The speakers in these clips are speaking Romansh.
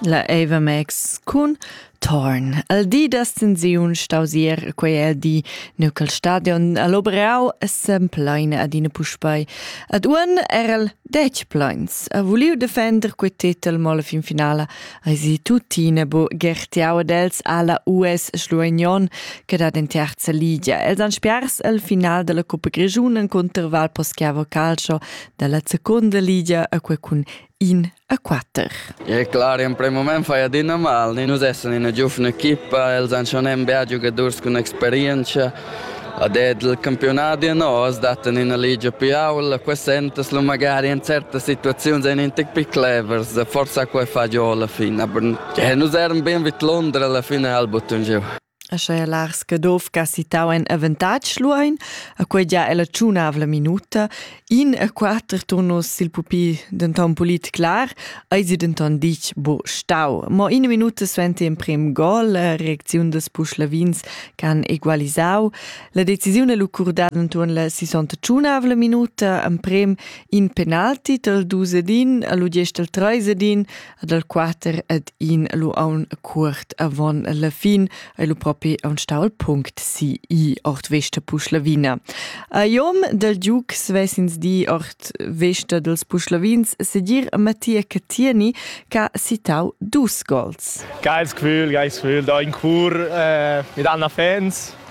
La Avamex cun Torn. El di d'ascensiun stausier quei el di neu col stadion all'Obrau sem plein adina puspei. Ad uon era el dec pleins. Ha vuliu defender quei titel mo la fin finala eisi tuttina bu gertiau ad els alla US Schluignon che dat in terza ligia. Els han spiars al final della Coppa Grigiun in contro Val Poschiavo Calcio dalla seconda ligia a quei cun in a quatter. E clar, in prim moment fai adina mal. Nus essan ina giuvna equipa, els han schon bia giugadurs cun experienza. Ad il campionati nos dattan ina ligia più aula, qua sentas lu magari in certe situazioni ein un tec più clevers, forse qua fa giù alla fine, aber nus eran ben vid Londra alla fine al button giù. Aschia Lars Caduff che ha citau in avantatg Luein, a quei gia è la tschunavla minuta, in e quater turnus sil pupi denton pulit clar, ei si denton ditg bo stau. Mo in minuta suenter emprem gol, la reacziun des Puschlavins che han egualisau, la decisione lu curdada entuorn la 61 minuta, emprem in penalti tal Dusedin, a lu diesch tal Treisedin, ad el quater ed in lu aun cuort avon la fin ei lu propi aun stau il punct si i ord vesta Puschlavina. A iom del Duc svesins di ord vesta dels Puschlavins segir a Mattia Catieni che ha citau dus gols. Geiles Gefühl, geiles Gefühl da in chor eh, mit anderen Fans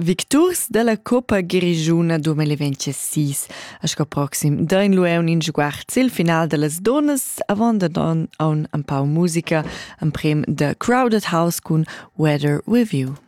Victurs dalla Coppa Grischuna 2026 a sco proxim dain lueun in sguard sil final dallas donas avant da don aun empau musica en prim da Crowded House cun Weather Review.